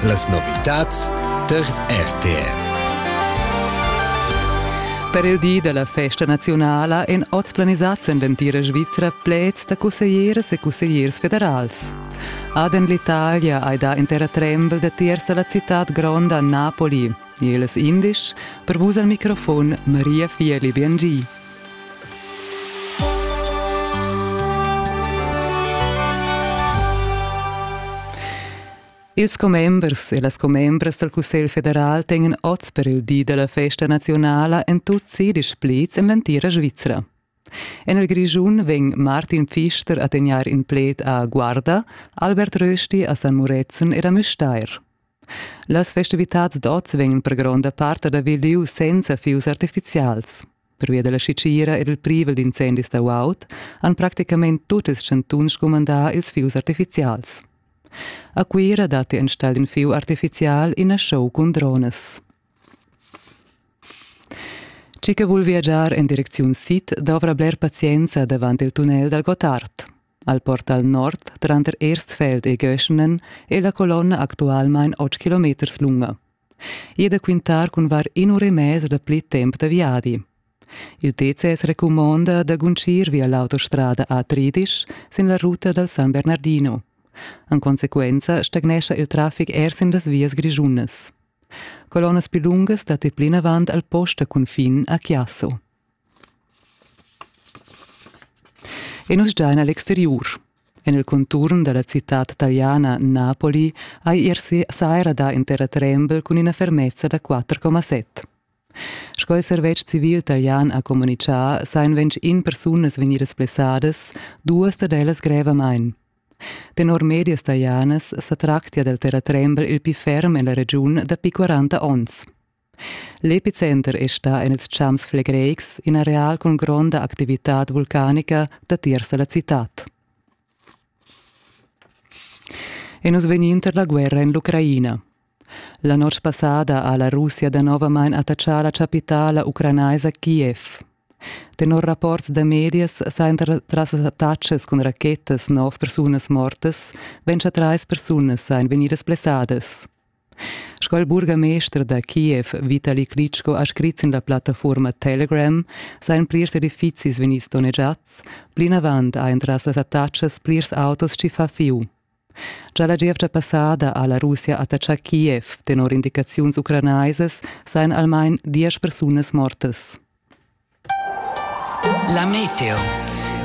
Las novitads tar RTR. Per il di da la festa naziunala èn oz planisads en l'entira Svizra pleds da cusseglieras e cussegliers federals. Aden l'Italia hai dà in terratrembel datiers da la citad gronda Napoli. Ils indisch, per vus al microfon Maria Fieli-Biangi. Ils commembers e las commembras dal Cussegl federal tengan oz per il di della festa nazionala en tut sedisch pleds en l'entira Svizra. En il Grischun vegn Martin Pfister a tegnar in pled a Guarda, Albert Rösti a San Murezzan ed a Müstair. Las festivitads d'oz vegnan per gronda part ad haver liu senza fius artificials. Pervia dalla sitgira ed il privel d'incendis da uaut han practicament tut ils chantuns scumandà ils fius artificials. A Cuira datti enstagl in fiu artificial ina show cun dronas. Chi che vul viagiar en direcziun sid dovra bler pazienza davant il tunnel dal Gottard. Al portal nord tranter Erstfeld e Göschenen è la colonna actualmain 8 kilometers lunga. I è da quintar cun var in'ura e mez da pli temp da viadi. Il TCS recumonda da guncir via l'autostrada A30 sin la ruta dal San Bernardino. En consequenza stagnescha il traffic er sin las vias grischunas. Colonnas più lungas datti plinavant al post a cunfin a Chiasso. E nus sdain a l'exteriur. En il conturn da la citad taliana Napoli ha ier saira dà in terratrembel cun ina fermezza da 4,7. Sco il servetsch civil talian ha communitgà, sain ventg in persunas vegnidas blessadas, duas dad ellas grevamain. Tenor medias talianas sa tractia dal terratrembel il pli ferm en la regiun dapi 40 onns. L'epicenter è stà en ils champs flegreics in areal cun gronda activitad vulcanica datiers da la citad. E nus vegnin tar la guerra en l'Ucraina. La notg passada ha la Russia danovamain attaccà la chapitala ucranaisa Kiev. Tenor rapports da medias sajan tras attacks cun rachettas nov persunas mortas, ventscha trais persunas sajan vegnidas blessadas. Sco il burgamester da Kiev Vitali Klitschko ha scrit sin la plattafuorma Telegram sajan plirs edifizis vegnids donnegiads, plinavant ha entras las attachas plirs autos tschiffà fiu. Gia la gievgia passada ha la Russia attaccà Kiev. Tenor indicaziuns ucranaisas sajan almain diesch persunas mortas. La meteo.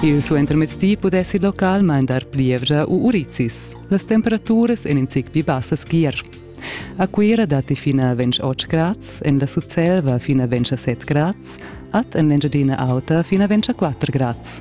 Il suentermezdi pudessi localmain dar plievgia u urizis. Las temperaturas èn in zic pli bassas ch'ier. A Cuira datti fin a 28 grads, en la Sutselva fin a 27 grads, ad en l'Engiadina Auta fin a 24 grads.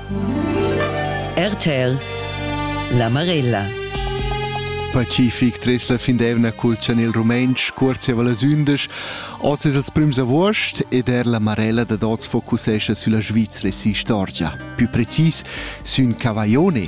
RTL La Marella Pacific tres la findevna culchan il rumentsch cuorziava las undisch. Oz es els prüms avuost ed er la Marella dad oz focusescha sülla Svizra e si istorgia. Pü precis sün Cavaione,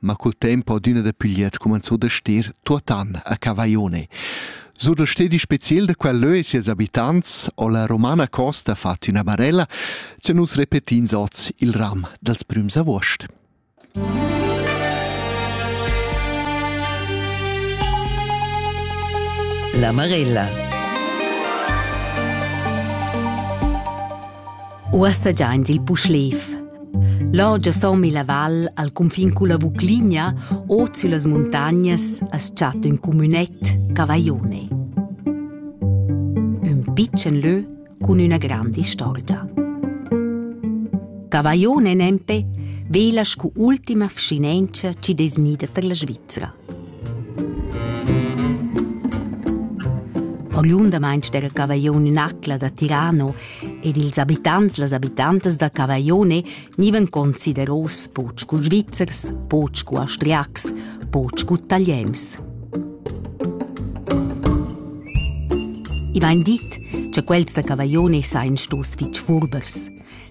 ma cul tempo adüna da Pigliet cumanzò da stir tuotan a Cavaione. Sur dal stedi speciel da quel lö e sies abitants ho la Romana Costa fat üna barella cha nus repetins oz il ram dals prüms avuost. La Marella Uossa giaint il Puschlev. L'orgia sommi la val al cunfin culla Vucligna ot süllas muntagnas as chatta ün cumünet, Cavaione. Ün pitschen lö cun üna granda istorgia. Cavaione nempe vela scu ultima vschinentscha chi desnida per la Svizzera. Oriundamain del Cavaglione in acla da Tirano ed ils abitants las abitantas da Cavaglione nivan consideros poch cu Svizzers, poch cu Austriacs, poch cu Italiens. I vain dit, cha quels da Cavaglione sain stos fich furbers.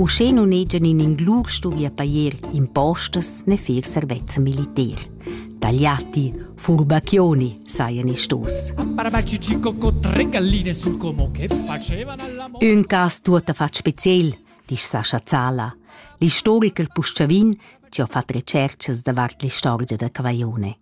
Uschè nun hegian in inglur stuvi pajer impostas ne fer servezza militer. Tagliati, furbacchioni, sajan i stos. Un cas tuotta fat speciel, disch Sascha Zala, l'istoriker Puschavin, che ha fat recerchas davart l'istorgia da Cavaione.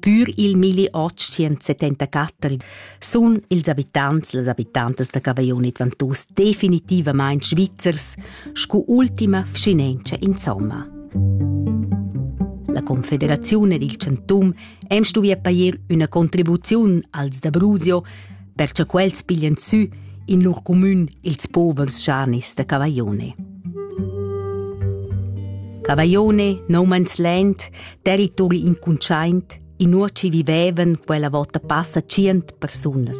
Pür il milli otg-setenta-quatter sun ils abitants e las abitantas da Cavaillon ed Ventoux definitivamaing svizzers scu ultima vschinentscha insomma. La Confederaziun ed il Chantum hem stuvü appair üna contribuziun als da Brusio perche quels piglian sü in lur cumün ils povers schanis da Cavaglione. Cavaglione, nomans lent, territori incuntschaint, in uoci vivevan quella vota passa cient persunas.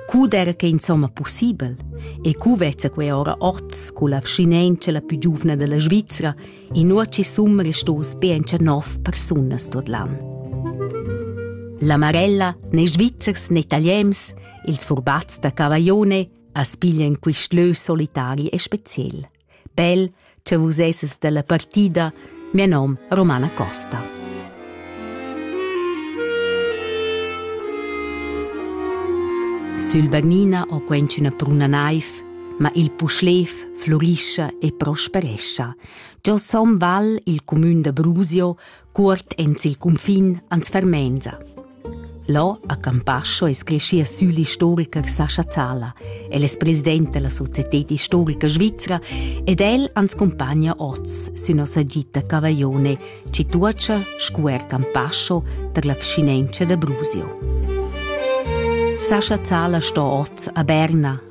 Cud era che insomma possibel e cu vezza quei ora orts cu la vschinenza la più giuvna della Svizzera Inuochi summel stos be encha nov persunas tot l'an. La Marella, ne Svizzers ne Italiens, ils furbats da Cavaglione, as piglian quist lö solitari e speciel. Bel, che vus esses della partida, mio nom Romana Costa. Sul Bernina ho quencina pruna naiv, ma il puschlev flurischa e prosperescha. Giò Somm Val, il cumün da Brusio, cuort ens il cunfin ans fermenza. Là a Campascio es creschia sü l'istoriker Sascha Zala. El es president della Societät Historica Svizzera ed el ans compagna oz sün nossa gita Cavaglione, ci tuocha scuer Campascio per la vcinenza da Brusio. Sascha Zala sto oz a Berna,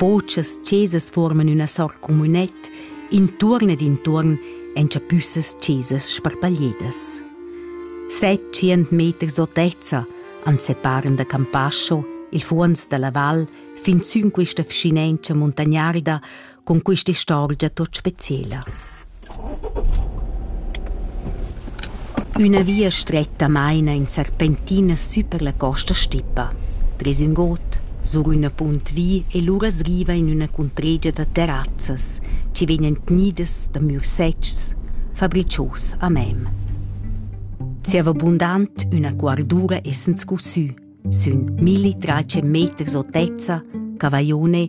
Botschas chesas forman üna sort communet intuorn ed intuorn en chapüssas chesas sparpagliedas. Settschient meters otezza han separen da Campascio, il fuonz dalla val, fin sün quista vschinenza muntagnarda con quist'istorgia tot speciela. Üna via stretta maina in serpentina sü per la costa stippa, tres ün god, sur üna punt vi e lura sriva in üna cuntregia da terrazzas chi vegnan tgnidas da mürs-setgs, fabricios a mem. Zieva bundant üna cuardura essend scussü, sün milli trace meters otezza, cavaione,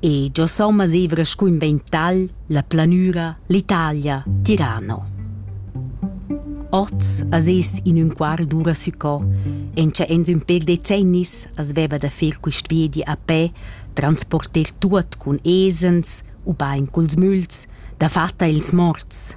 e giò somma zevra scuinventa'l la planüra l'Italia Tirano. Oz as es in ün quart d'ura sü co, encha ens ün pêr decennis as veva da fer quist viedi a pè, transporter tuot cun esens ubain culs müls, dafatta ils morts.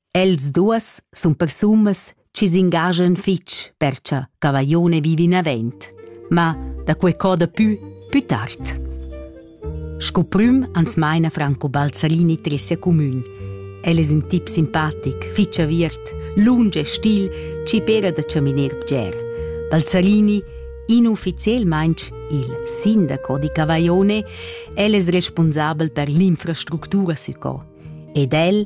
Els duas sun persunas chi s'ingaschan fich per cha Cavaglione vivi inavant, ma da que choda pü pü tard. Sco prüm ans maina Franco Balzarini Tressia Comün. El es ün tip simpatic, fich aviert, lunsch e stil chi pera da chaminer bger. Balzarini inufficielmaing il sindaco di Cavaglione, el es responsabel per l'infrastructura sü co. Ed el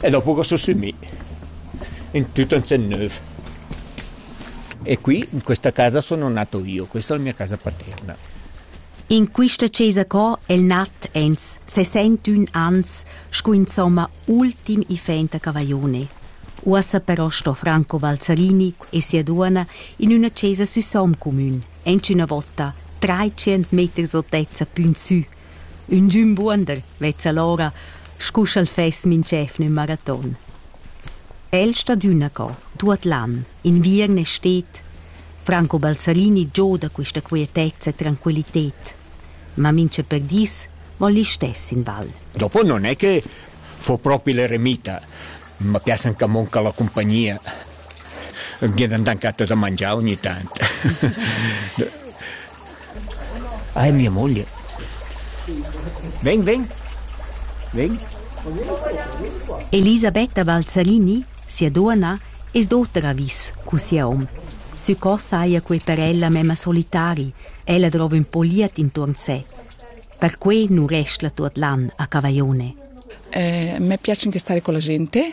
e dopo ch'ho sussumì in tut ün sen nouv. E qui, in questa casa sono nato io, questa è la mia casa paterna. In quista chesa co el nat ens se sent ün ans scu insomma ultim ifenta cavaione. Uossa però sto Franco Valzarini e sia duonna in üna chesa sü Somm comün, ench üna vota 300 meters altezza pün sü, Ünchün buonder vezza l'ora, scu sch'el fess minch'evna ün maraton. El stat üna co, tuot l'an, inviern e stet. Franco Balzarini gioda quista quietezza e tranquillited. Ma mincha per dis voul istess in val. Dopo non è che fo propi l'eremita. Ma piacen che manca la compagnia. Gn'an dan catto da mangiar ogni tant. Ei mia moglia. Vegn, vegn. Vegn. Elisabetta Balzarini, sia duonna, es d'oter avis cu sia hom. Sü co saja quei per ella memma solitari, ella drova ün po liet intuorn sé. Perquei nu restla tuot l'an a Cavaione. Eh, me piace anche stare con la gente.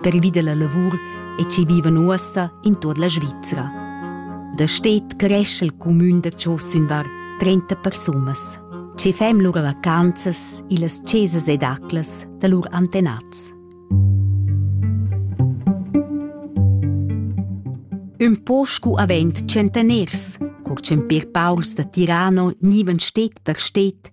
pervi dalla lavur e che vivan uossa in tut la Svizra. Da stet cresce il cumün da Cho sün var 30 persunas. Ci fem lur vacanzas illas chesas ed aclas da lur antenats. Ün po scu avent centaners, cur ch'ün pir paurs da Tirano nivan stet per stet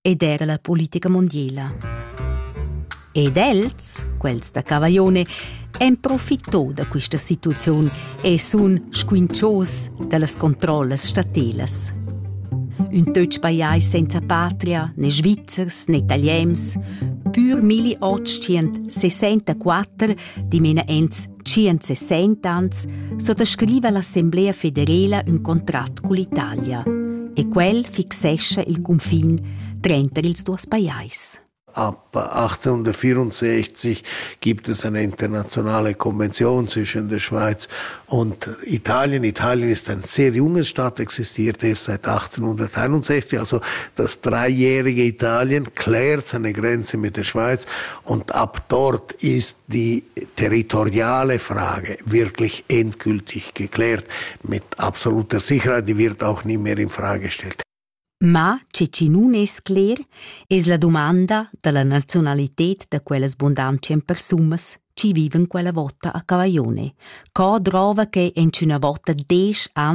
ed era la politica mondiala. Ed els, quels da Cavaglione, en profitò da questa situaziun e sun squinchos dallas controllas statelas. Un töch pajais senza patria, né svizzers né italiens, pur 1864 dimena ents 160 ans suttascriva l'Assemblea federela ün contrat cull'Italia e quel fixescha il cunfin trenter ils duos pajais. Ab 1864 gibt es eine internationale Konvention zwischen der Schweiz und Italien. Italien ist ein sehr junges Staat, existiert erst seit 1861, also das dreijährige Italien klärt seine Grenze mit der Schweiz Und ab dort ist die territoriale Frage wirklich endgültig geklärt, mit absoluter Sicherheit, die wird auch nie mehr in Frage gestellt. Ma che chi nun es cler es la domanda dalla nazionalität da quellas bundanzien persumas chi viven quella vota a Cavaglione. Co drova che in üna vota desch an